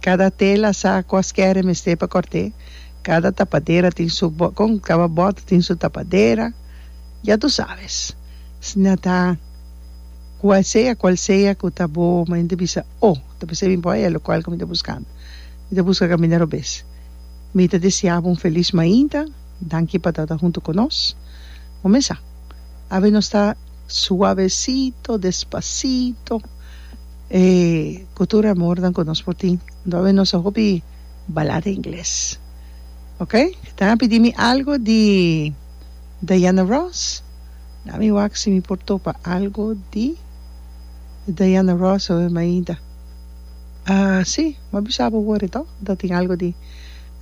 Kada tela sa kuasker e mester pa kòrt'é. Kada tapadera tin su bòt, kon kada bòt tin su tapadera. Ya tu sabes. Sna ta kua sea kual sea ku ta bo, ma enta bisa, O, ta bisa bin poi e lokual ku mi ta buskando. Mi ta buska kaminda robes. Mi ta desea bo un felis mainta. Danki pa tabata huntu ku nos. Bo mes sa, awe nos ta suavesito, despasito. E cu tur amornan cu nos por tin. Domi nos a hopi balada ingles. Ok. Tan a pidi mi algo di Diana Ross. La mi wak si mi por topa algo di Diana Ross oe mainta. Ah si m'a bisa bo worde to ta tin algo di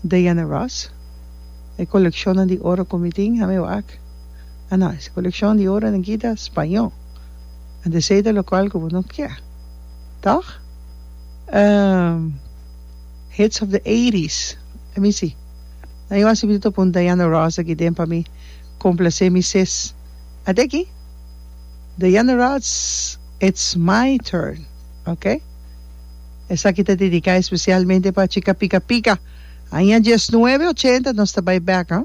Diana Ross. E coleccionnan di oro cu mi tin. Ami wak. Ah no. E coleccionnan di oro nan kita spaño. a decide locual cu bo no kier. Toch? Ehm, hits of the eighties. Let me see. Na yo a sibi ta pon Diana Ross aki den pa mi complace mi sis. A te aki, Diana Ross, it's my turn, ok? Esaki ta dedica especialmente pa chica pica pica. Aña diesnuebe ochenta nos ta bay back, huh?